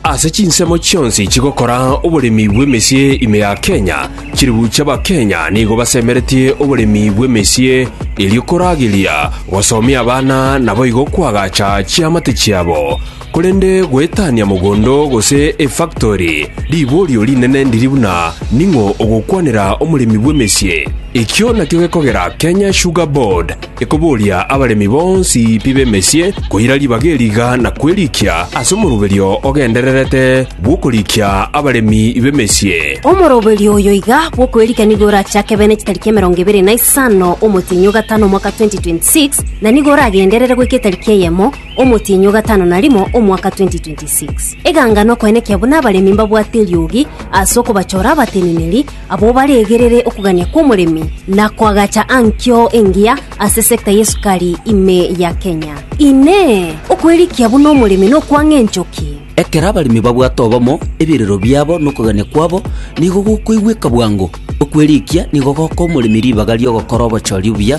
Ase chinsemo chionsi chigokora oboremi bw'emesie ime ya Kenya, chiribuchi Abakenya nigo basemeretie oboremi bw'emesie erio korageria gosomia abana naboigo koagacha chiamate chiabo. Korende goetania mogondo gose efactori riborio rinene ndiri buna ning'o ogokwanera omoremi bw'emesie. Ekio nakio gekogera Kenya Sugar Board, Ekoboria abaremi bonsi pi b'emesie koira ribaga eri iga na kwerikia ase omoroberio ogendererete bw'okorikia abaremi b'emesie. Omoroberio oyo iga bw'okwerikia nigo orache akebe ne chitariki emerongo ebere na isano omotienyi o gatano omwaka 2026, na nigo oragenderere goika etariki eyemo omotienyi o gatano na rimo omwaka 2026. Eganga nokoenekia buna abaremi mbabwate eriogi ase okobachora abateneneri Abwo baregerere okogania kw'omoremi na koagacha ankio engiya ase sector y'esukari ime ya Kenya. Inee! Okwerikia buna omoremi nokwang'a enchoki? Ekero abaremi babwate obomo, ebirero biabo na okogania kwabo nigo gokoigweka bwango. Okwerikia nigo gokoa omoremi ribaga ri'ogokora obochori obuya,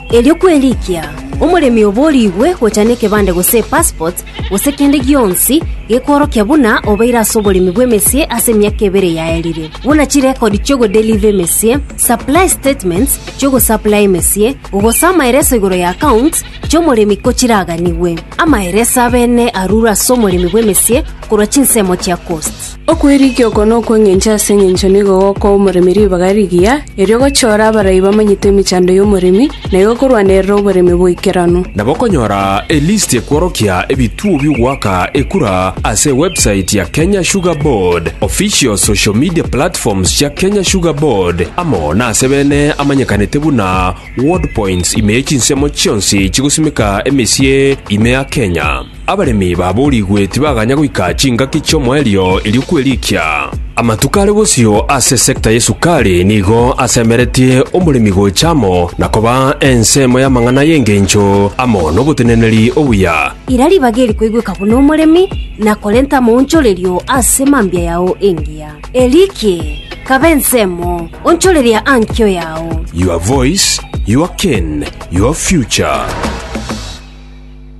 Erio kwerikia omoremi oborigwe gocha nekebande gose epassport, gose kende gionsi gekworokia buna obeire ase oboremi bw'emesie ase emiaka ebere yaerire, buna chirekodi chi'ogodeliva emesie, supply statements chi'ogosaplaya emesie, gose amaereso igoro ya accounts chi'omoremi ko chiraganigwe. Amaereso abene arure ase omoremi bw'emesie korwa chinsemo chia cost. Okwerigia oko nokw'engencho ase engencho nigo gokoa omoremi ribaga rigiya, erio gochore abarai bamanyete emechando y'omoremi, na igo korwanerera oboremi boikeranu. Nabo okonyora elisti ekworokia ebituo bi'ogoaka ekura ase website ya Kenya Sugar Board, official social media platforms chia Kenya Sugar Board, amo nase bene amanyekanete buna Ward Points ime chinsemo chionsi chigosimeka emesie ime ya Kenya. Abaremi baboorigwe tibaganya goika chingaki chi'omoerio erio kwerikia. Amatuko are bosio ase esekta y'esukari nigo asemeretie omoremi gocha amo na koba ensemo y'amang'ana y'engencho amo n'oboteneneri obuya. Ira ribaga eri koigweka buna omoremi, na korenta amaonchorerio ase mambia yao engiya. Erikie, kaba ensemo, onchoreria ankio yao. Your voice, your cane, your future.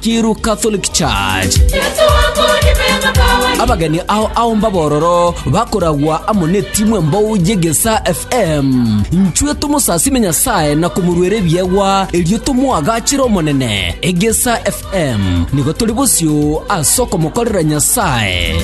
Kiiru Catholic Church. Abageni ao aomba bororo bakoragwa amo netimwe mbou yegesa FM. Nchwe tomosasime Nyasaye na komoruera ebiegwa erio tomoagachire Omonene. Egesa FM nigo tori bosio ase okomokorera Nyasaye.